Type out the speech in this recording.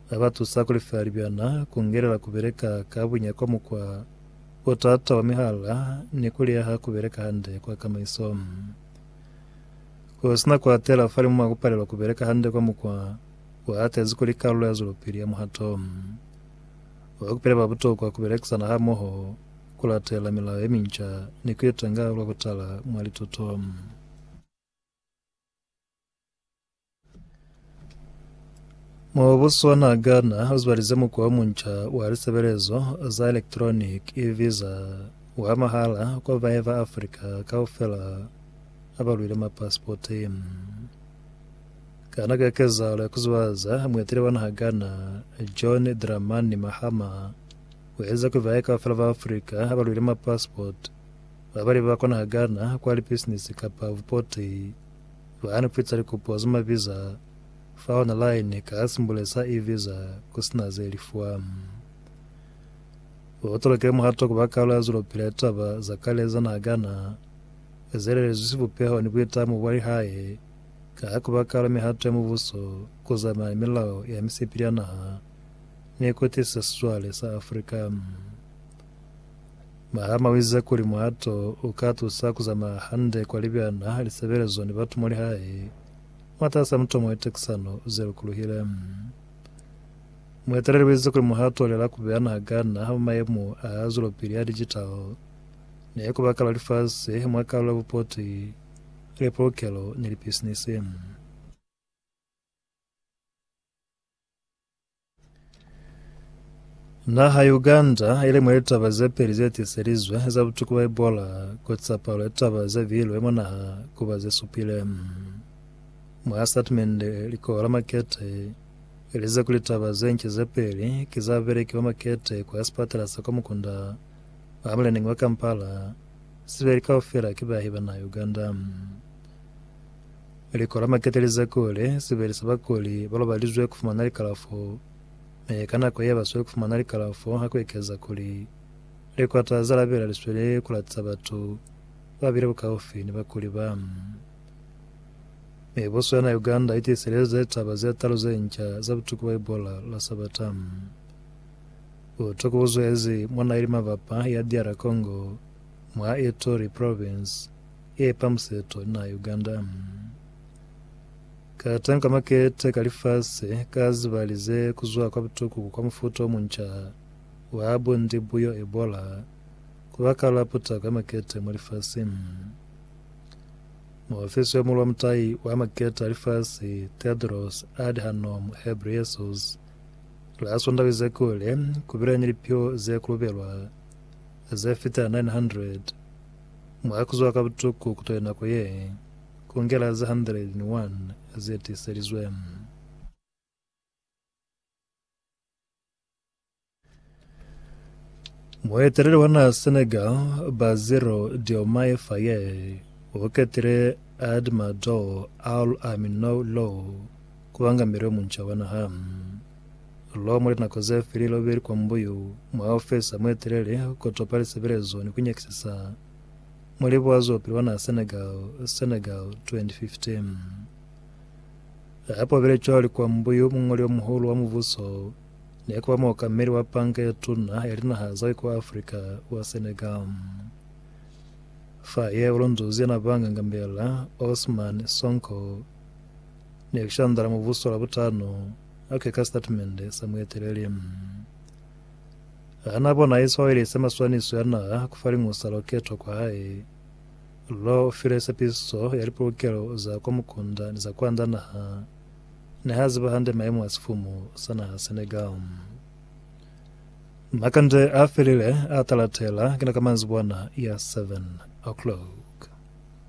Ba ba tusa ku lifela libyana, ku ngelela ku beleka ka bunya kwa mukwa o t'ata wa mihala, ni ku liyaha ku beleka hande kwa kamaiso. Ku si na ku atela falimu mwa ku palelwa ku beleka hande kwa mukwa o hatezi kuli kalulo ya zwelopili ya muhato wa ku pila ba butokwa ku belekisana hamoho, ku latela milao ye minca, ni ku itenga lwa ku tala mwa lituto. Mubuso wa naha Ghana uzibalize mukwa omunca wa lisebelezo za electronic e-visa wa mahala kwa bae ba Africa kaufela abalwile mapasipoti. Kana ka kezahalo ya kuzubaza, mueteli wa naha Ghana John Dramani Mahama uelize kuli bae kaufela ba Africa abalwile mapasipoti Ba bali ba konahagana kwa lipisinisi kapa bupoti ba ni fitisa likopo za maviza fa onalaini ka simbule sa e-visa ku si na ze lifwa. U tolokile muhato ku ba kalu ya zulopila ya taba za kale za nahagana ze lelezwi sibupeho ni buitamo bwa lihae ka ku ba kalu ya mihato ya mubuso ku zamana ni milao ya misipili ya naha ni ku tisisa sizwale sa Afrika. Mahama uize kuli muhato uka tusa kuzamaya hande kwa libyana, lisebelezo ni batu muli hae mwataasa mutomo wetekisano ze lukuluhile. Mueteleli uize kuli muhato olela kubeana ha gana ha mayemo a zwelopili a digital ne kubaka lwa lifasi mwa kalulo ya bupoti, lipolokelo ni lipisinisi. Naha ya Uganda ili mwa litaba ze peli ze tiselizwe za butuku bwa Ebola ku tsa palo ya litaba ze bihilwe mwa naha ku ba ze supile. Mwa statimende, likoho la makete li lize kuli litaba ze nca ze peli ki za babeleki ba makete kwa sipatala sa kwa mukunda wa muleneñi wa Kampala, sibeli kaufela ki baahi ba naha ya Uganda. Likolo la makete li za kuli sibeli sa bakuli ba lobalizwe ku fumana likalafo, mi ka nako ye ba sweli ku fumana likalafo ha ku ekeza kuli likwata za lapela li sweli ku latiza batu ba bile bukaufi ni bakuli ba. Mibuso ya na Uganda i tiselize litaba ze talu ze nca za butuku bwa Ebola la Sabata. Butuku bu zwezi mwa naha ili mabapa ya DR Congo, mwa Ituri Province, Epa museto na Uganda mm. Katanka makete ka lifasi ka ziba lize kuzwa kwa butukuku kwa mufuta omunca wa bundi buyo Ebola kubakala putako ya makete mwa lifasi mm. Muofisi yo mulwa mutai wa makete a lifasi Tedros Adhanom Ghebreyesus la Sondaha wize kuli kubile ni lipio ze kulubelwa ze fita 900 Mwa kuzwa ka butuku kutali nako ye kungela za 101 ze tiiselizwe. Mueteleli wa naha Senegal, Bassirou Diomaye Faye, u ketile Admadou Al Aminou Lo kuba ngameli yo munca wa naha. Lo mwa linako ze file lo beli kwa mbuyu mwa ofesa mwe telele ku topa lisebelezo ni ku nyakisisa mwa libuazo pili wa naha Senegal, Senegal, 2015. Ha po bile cwalo li kwa mbuyu muñoli o muhulu wa mubuso ne ku ba muokameli wa Panka ye Tuna ya Linaha za kwa Afrika wa Senegal. Fa ye u lunduzi ya na banga ngambela, Ousmane Sonko, ne ku shandala mubuso Labutano, Ok, ka sitatimende sa mueteleli, mm, ha na bona Isiwaeli se maswaniso ya naha ku fa liñwi sa loketo kwa hae. Lo file sepiso ya lipulukelo za kwa mukunda ni za kwanda naha, ne ha ziba hande maimo a sifumu sa naha Senegal. Mm. Makande a felile a talatela, kina ka manzibwana ya 7 o'clock.